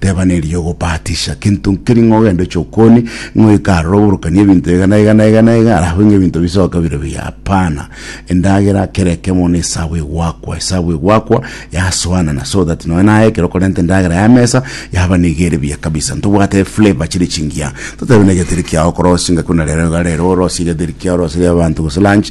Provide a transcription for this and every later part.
Teba nerigia ogobatisha kinto nkeri ng'a ogende oche okoni ng'a oike aroro oborokani ebinto iga na iga na iga na iga alafu ng'a ebinto bisoke bire buya hapana endagera kera ekemo na esabu egwakwa esabu egwakwa yasoanana so that nonya naye ekero okorenta endagera ya mesa yaba niga ere buya kabisa ntobwate eflavor chire chingiya totebe na egeteri kiago okorosia ngaki buna rero iga rero orosie egeteri kiago orosirie abanto gose lunch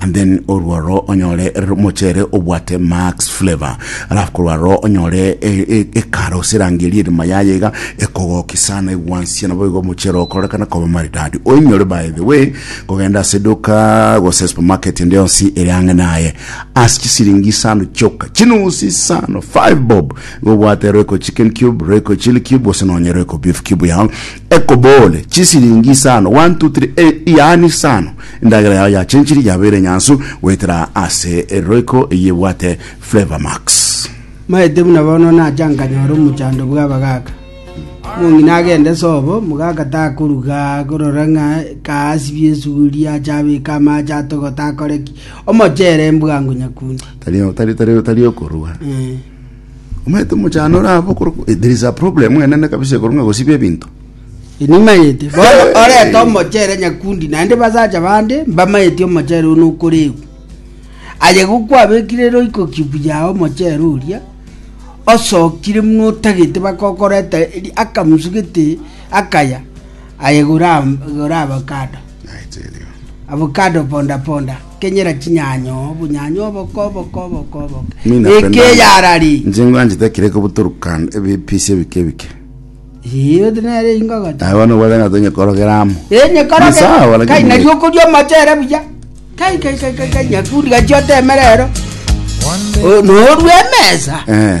And then orwo aro onyore r- mochere obwate max flavor alafu korwa aro onyore e- e- ekara oserangerie erima yaye iga ekogoki sana egwansie nabo igo omochere okorekana koba maridadi oinyore by the way kogenda ase eduka gose supermarket ende yonsi ere ang'e naye ase chisiringi isano chioka chinusi isano 5 bob igo obwate royco chicken cube royco chili cube gose nonye royco beef cube yao Ekoboole, chisiringi isano, one, two, three, e, yaani isano, endagera yao ya chenchiri yabeire enyansu goetera ase Royco eyio ebwate Flavour Max. Maete buna bono nacha nkanyora omochando bw'abagaaka. Omong'ina agende sobo, omogaka takoruga korora ng'a kaasibie esuguri, ache abeke amaache atogote akore ki? Omochere mbwango nyakundi. Tari tari tari tari okorua. Eh. Omanyete omochano ore abo okorokwa eh, there is a problem enene kabisa ekorwa ng'a gosiba ebinto. Inimanyete. Bono orete omochere nyakundi naende basacha bande mbamanyeti omochere one okoregwa. Aye gokwabekire roiko cube yao omochere oria osokire muna otagete bakokoreta eri- akamusu gete akaya aye gora- gora avocado. Avocado ponda ponda, kenyera chinyanyo, obunyanyo oboke oboke oboke oboke. Mi napenda- Ekeyarari. Nche ngwanchete ekero ekobuturukan ebipisi ebike ebike Iyo nere ingogote. naye bono obwate ng'a tonyekorogera amo Enye koroge. Ni sawa, lakini- Kai nari okoria omochere buya. Kai kai kai kai kai nyakundi gachi otemere ero. One day Oh, norue emesa. Eh,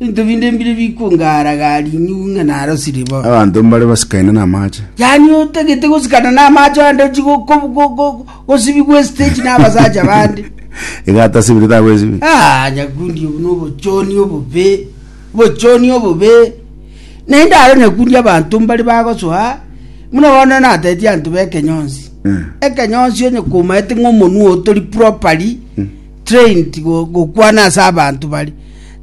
Ebinto binde mbire bikwongara gari inyugu ng'a narosiri bo. Abanto mbare basikaine namache. Yani otagete gosikana namache ande ochi go- go- go- go- gosibigwa estage nabasacha bande. Iga atasibiri takwesibi. Ah, nyakundi obu nobochoni obobe bochoni obobe naende aro nyakundi abanto mbare bagosoa muna bono nateti anto bekenyonsi Eh. ekenyonsi onye komaete ng'a omonwa otori properly trained gokwana ase abanto bari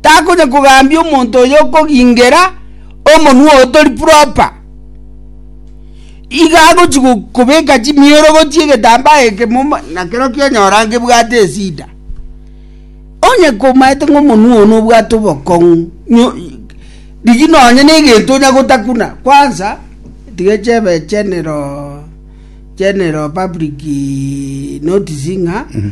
takonya kogambia omonto oyo okogingera omonwa oo tori proper iga agochi kobeka chimiorogochi egetambaa eke moma nakero kionyora ngebwate esida onye komaete ng'a omonwa oo nobwate obokong'u nyo riria nonye na egento onya gotakuna kwansa tiga chebe general general public notice ng'a mm -hmm.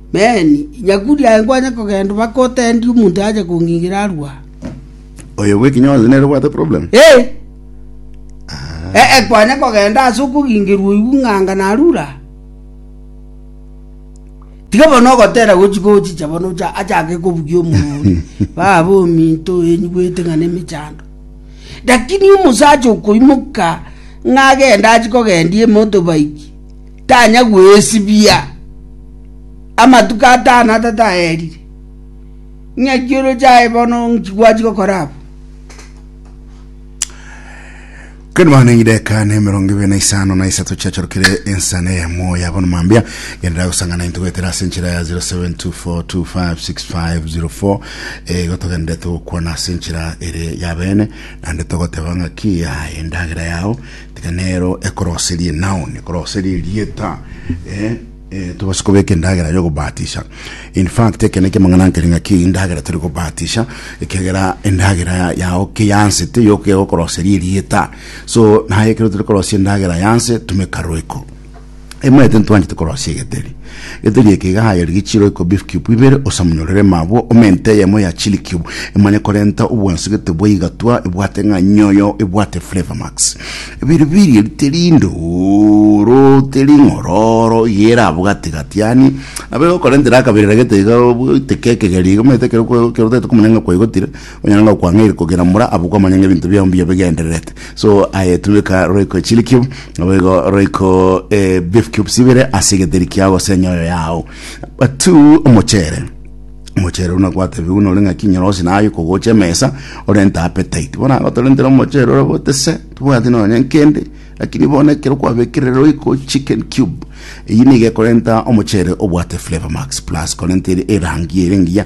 “Men, inya kuri aye nkwanye kogenda mpaka otendie omonto ache kong'ingira arue aa.” Oyo bw'ekinya onsi nere obwate problem. Ee, nkwanye kogenda ase okong'ingerwa oigwe ng'a anga narure aa. Tiga bono ogotera gochika ochicha bono ocha achake kobugia omorwori, baba ominto oenyigwete ng'a nemechando. Lakini omosacha okoimoka ng'a agende achie kogendia ime otobaiki. Tanya gwesibia amatuko atano atataerire. Ng'aki oroche aye bono nkigwachi gokora abo. Kani mwana engideka ne mirongo ibere na isano na isato chiachorokire ensana ya moyo yabo na mambia yendera gusangana into gwetera ase enchera ya 0724256504 eh, gotogenderete gokwana ase enchera ere ya bene nande togoteba ng'aki ya endagera yao Tiga nero ekoroserie noun, ekoroserie erieta, eh, eh, tobase kobeka endagera y'ogobatisha. In fact, eke neke mang'ana nkere ng'aki endagera tore gobatisha, ekegera endagera yao ke yansete yoka egokoroseria erieta. So, naye ekero tore korosia endagera yanse, tumeka roeko. Emanyete ntwanchete korosia egeteri. Egeteri eke iga hayeria gechiiro iko beef cube ibere osamunyorere ime abwo ome ente eyemo ya chili cube emanye korenta obwansegete bwa igatwa ebwate ng'a nyoyo ebwate flavor max. Ebiiri biiri eri teri ndooro teri ng'ororo iga ere abwo gati gati yaani nabo egokorentera akaberera gete iga oite kekegeri iga omanyete ekero kwa ekero otagete komanya ng'a kwaigotire Onye nanga kwang'aire kogera mora abokwa manya ng'ebinto biao mbuya bigendererete. So aye tumeka roiko chili cube, naboigo roiko eh, beef cubes ibere ase egeteri kiao gose enyoyo yao. Number two, omochere omochere una gwatebiwa nore ng'a kinyerosi naye kogocha emesa orente appetite bono aba torentire omochere ore botese tobwati nonya nkende lakini bono ekero kwabekire roiko chicken cube eyi niga ekorenta omochere obwate flavor max plus korenta eri- erangi ere engiya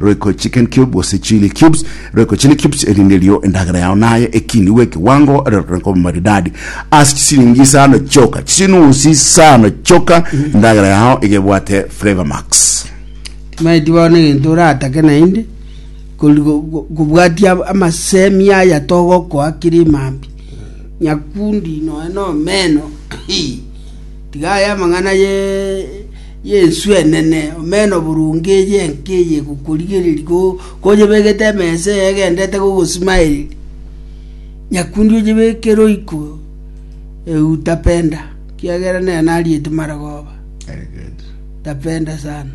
Royco chicken cube gose chilli cubes. Royco chilli cubes erinde erio endagera yao naye ekinigwe ekewango erorokane koba maridadi ase chisiringi isano chioka. Chisinusi isano chioka endagera yao iga ebwate flavour max. Timaeti bono egento oratake naende kori- go- go- kobwatia ab- amasemi aya togokoa kere mambia nyakundi noe nomeno Hii. Tiga aye amang'ana ye Yeso enene, omena oboronge eye enka eye egokorigereria koyebegete emesa eye egendete kogosimaereria. Nyakundi oyebeke roiko eutapenda, ekiagera nere nariete marogoba, tapenda sana.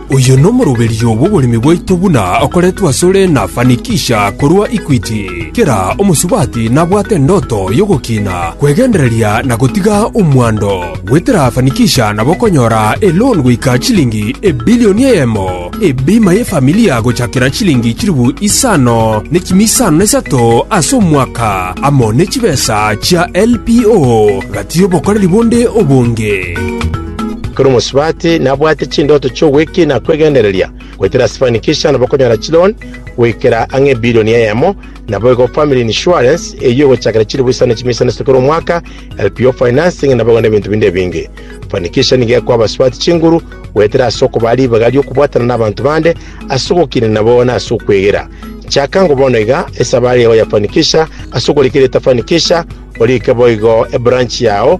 Oyo nomoroberio bw'oboremi bwaito buna okoretwe asore na Fanikisha korwa Equity. Kera omosubati nabwate endoto y'ogokiina, kwegendereria na gotiga omwando. Goetera Fanikisha nabo okonyora eloan goika chilingi ebilioni eyemo, ebima y'efamilia gochakera chilingi chilifu isano ne chimi isano na isato ase omwaka, amo ne chibesa chia LPO gati y'obokoreri bonde obonge. Ekero omosubati nabwate chindoto chi'ogwekina na kwegendereria, goetera Sifanikisha nabo okonyora chiloan goikera ang'e ebilioni eyemo, naboigo Family Insurance eyio egochakera chiribuisano chimia isano isatu kera omwaka, LPO Financing nabo igo nebinto binde ebinge. Fanikisha nigo ekoa abasubati chinguru goetera ase okobaa ribaga ri'okobwatana nabanto bande ase ogokina nabo na ase okwegera. Chaka ngo bono iga esabari yao ya Fanikisha ase okorika erieta Fanikisha, orike boigo ebranch yao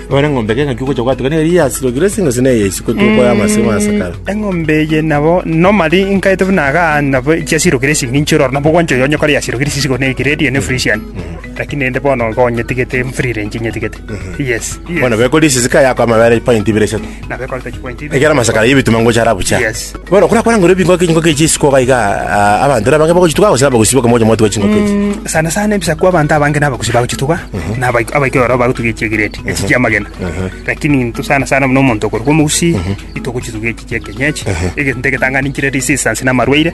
Nore eng'ombe eke ng'aki ogocha gwatuga neri yasirogire ase eng'encho neye isiko tokore amasemo ase kare. Eng'ombe eye nabo normally inkaete buna iga aah, nabo chiasirogire ase eng'encho ororo nabo ogwancha oyo onyakore yasirogire chisiko ne grade eye ne fresian. Lakini rende bono iga onyetigete mfree range inyetigete. Yes. Bono beko risisika yako amabere point ibere isato. Ekero amasako aria y'ebitunwa ngocha ara buya. Bono okora kwarangire ebingoka echingoko echio isiko iga iga ah, abanto era abange bagochituga gose abagusi bakaba mocha mwatuga chingoko echi. Mm, sana sana ebisaku abanto abange nabagusi bagochituga na abaik- abaikoro oro bagotuga echi egiredi echi chiamagena lakini into sana sana buna omonto okorokwa omogusi itogochituga echi chi'ekenyechi egento egetang'ani chire risisi ase namarwaire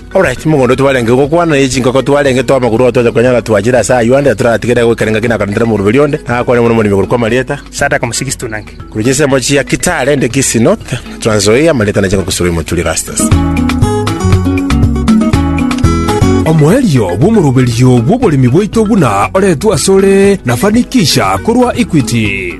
Ore chimogondo twarenge gokwana, ne chinkoko twarenge tw'amaguru oo tocha konyara twachire ase ayio ande toratigere goika ningaki nakarentera omoruberi onde, na akwane buna omoremi korokwa amarieta, Sadaka Mosigisitu Nange. Korwa chinsemo chia Kitale, Ndekisi, North, Trans Nzoia, amarieta na chinkoko Surui, Muturi, Rastus. Omoerio bw'omoroberio bw'oboremi bwaito buna oretwe asore na Fanikisha korwa Equity.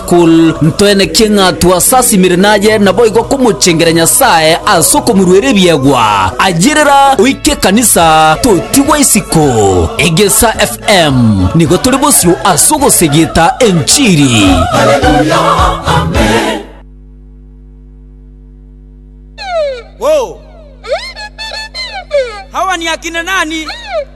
Kul. Ntwenekie ng'a twasasimire naye, naboigo komochengera Nyasae ase okomoruera ebiegwa. Ayirera oike ekanisa, totigwa isiko. Egesa FM, nigo tore bosio ase ogosegeta enchiri. Wo! Hawa ni akina nani?